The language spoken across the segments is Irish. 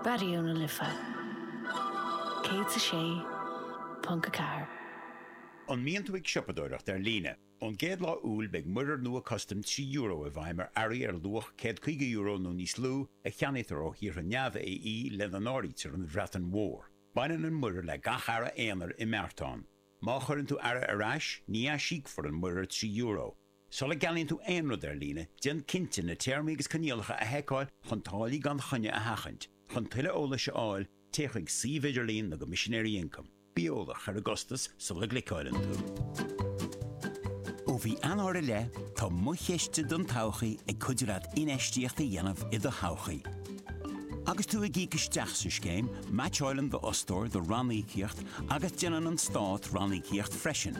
Raidió na Life 106.4. An mbíonn tú ag siopadóireacht ar líne? Ón gcéad lá Iúil beidh muirear nua custaim trí euro i bhfeidhm ar earraí ar luach céad caoga euro nó níos lú a cheannaítear ó thíortha neamh-AE lena n-áirítear an Bhreatain Mhór. Baineann an muirear le gach earra aonair i mbeartán. Má chuireann tú earra ar ais, ní aisíocfar an muirear trí euro. Sula gceannaíonn tú aon rud ar líne, déan cinnte na téarmaí agus coinníollacha a sheiceáil chun táillí gan choinne a sheachaint. Chun tuilleadh eolais a fháil, téigh chuig suíomh idirlín na gCoimisinéirí Ioncaim. Bí eolach ar an gcostas sula gcliceáilann tú. Ó mhí Eanáir i leith, tá Mo Chiste don Todhchaí ag cuidiú leat infheistíocht a dhéanamh i do thodhchaí. Agus tú ag íoc isteach sa scéim, meaitseáilann d'fhostóir do ranníocaíocht agus déanann an Stát ranníocaíocht freisin.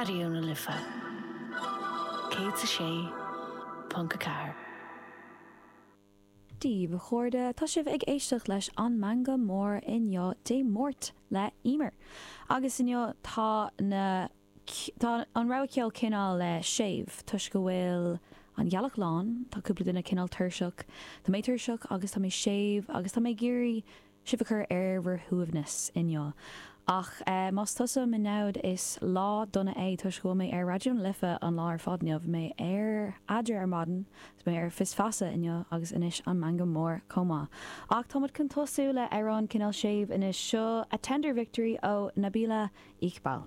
Raidió na Life 106.4. Daoibh chairde, tá sibh ag éisteacht leis An Meangadh Mór inniu, Dé Máirt, le Emer. Agus inniu tá na tá an rogha ceoil cineál le séimh, toisc go bhfuil an ghealach lán, tá cúpla duine cineál tuirseach, tá mé tuirseach agus tá mé séimh agus tá mé ag iarraidh sibh a chur ar bhur shuaimhneas inniu. Ach más tusa mo namhad, is lá dona é toisc go bhfuil mé ar Raidió na Life an lá ar fad inniu, bhí mé ar Eadra ar maidin, bhí mé ar Fios Feasa inniu agus anois an Meangadh Mór chomh maith. Ach táimid chun tosú le amhrán cineál séimh anois. Seo A Tender Victory ó Nabihah Iqbal.